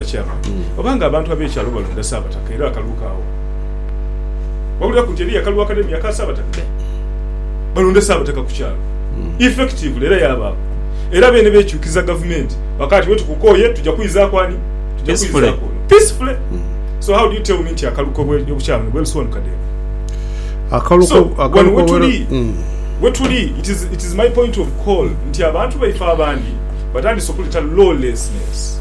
Kyaba oba nga abantu ab'ekyalo balonda Saabataka era akalulu kaawoo. Wabuliraku nti eriyo akalulu akanene aka Saabataka. Balonda Saabataka ku kyalo effectively era yaabaaku. Era beene beekyukiza gavumenti bakaaba nti wetukukooye tuja kwizaaku ani? Tuja kwizaaku ono peacefully. So how do you tell me nti akalulu k'obukyaala buno bwerusiwanuka Dave? So wano wetuli, wetuli, it is, it is my point of call nti abantu baife abandi batandise okuleta lawlessness.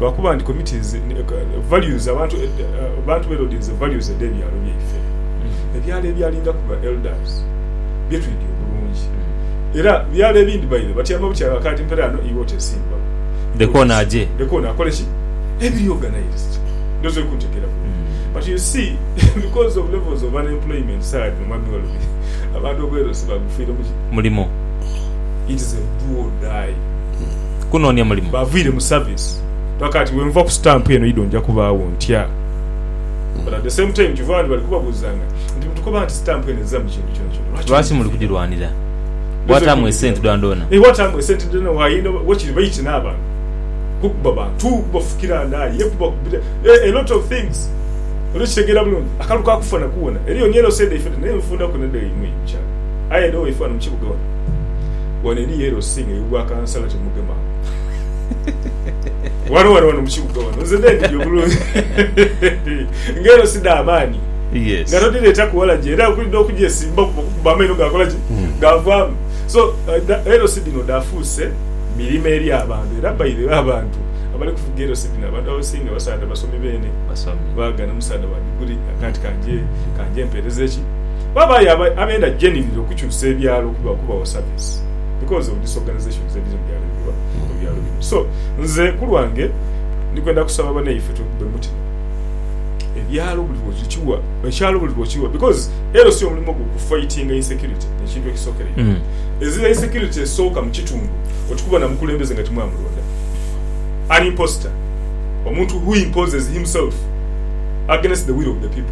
lwakuba nti committees values abantu abantu be loadinze values edhe byalo byaife ebyalo ebyalingaku ba elders byetwidhi obulungi era byalo ebindi baire batyama butyanga kati mpera ano iwe otesimbawo Leka ono aje. leka ono akole ki ebiri organised ndhowoza oli kuntegeera bulungi but you see because of levels of unemployment sawa dhino mwami Walubi abantu obwerosi bagufiiremu ki? Mulimo. it is a do or die. kunoonia mulimu. Baaviire mu service paka ati wenva ku stamp eno idho nja kubaagho ntya? But at the same time kyova ndi bali kubabuuzanga nti mutukoba nti stamp eno ezira mu kintu kyonakyona lwaki Lwaki muli mugifira? kugirwanira? Bwataamu esente dhoonadhoona. Eeh bwataamu esente dhoonadhoona waayenda wakiri baiti n'abantu kukuba bantu, kubafukira ndaali ye kuba kubita eeh a lot of things oli kukitegeera bulungi. Akalu ka kufa naku wona eriyo ni yellow side ifena naye nfunda ku nedha yaimwe mukyala aye edho waife wano mu kibuga wano. Wano eri yellow sing eyo gwa kansala temugema wano wano wano mukibuga wano nze ndenidi obulungi nga ero sida amaani yes. nga todireta kuwala gye era okulidde okujesimba kuba amaino gakola ki hmm. gavamu so uh, ero sidino dafuuse mirimo eri abantu era bairebe abantu abali kuvuga ero sidino abantu abasinga basaada basomi beene bagana musaada wa diguli akati kanje kanje mpereza eki Babayo abenda generally okukyusa ebyalo okubawo service because of disorganizations ediri mubyalo mubyalo bino so nze kulwange ndikwenda kusaba banaife tube mutima ebyalo buli lwokiwa ekyalo buli lwokiwa because ero si omulimu gwo ku fightinga insecurity ekintu ekisokera mm. ezira insecurity esooka mukitundu okikuba na mukulembeze nga timwamulonda an imposter omuntu who imposes himself against the will of the people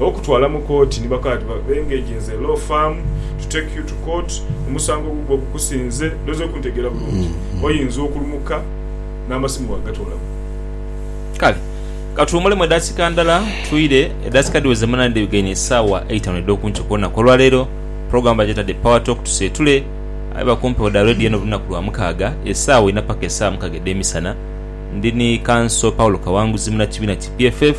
okutwala mu kooti ni bakola ati, Bengage nze law firm to take you to court, omusango gugwo gukusinze. Noze okuntegeera bulungi, oyinza okulumuka n'amasimu waagatoolamu. Kale ka tuwuumulemu edakika ndala twire. Edakika dhiweze mu nane dh'ebigaine isaawa eitaanu edh'oku nkyo ku lunaku olwa leero. Pulogulaamu bagyetadde Power Talk Tuseetule. Aye ba ku mpewo dha leediyo eno buli lunaku lwa mukaaga, esaawa inha paka esaawa mukaaga edh'emisana. Ndi ni Kanso Paulo Kawanguzi, munnakibiina ki PFF.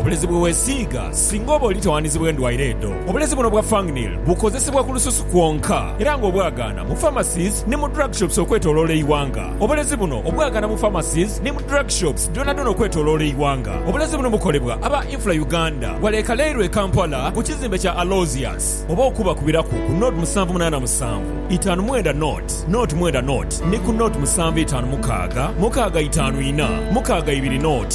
Obulezi bwe weesiiga singa oba oli tawandizibwa endwaire edho. Obulezi buno obwa Fangneal bukozesebwa ku lususu kwonka era nga obwagaana mu pharmacies ni mu drug shops okwetoloola eighanga. Obulezi buno obwagaana mu pharmacies ni mu drug shops dhonadhona okwetoloola eighanga. Obulezi buno bukolebwa aba Infra Uganda wale ekaleirwe e Kampala ku kizimbe kya Aloysius. Oba okubakubiraku ku nought musanvu munaana musanvu itaanu mwenda nought nought mwenda nought ni ku nought musanvu itaanu mukaaga mukaaga itaanu ina mukaaga ibiri nought.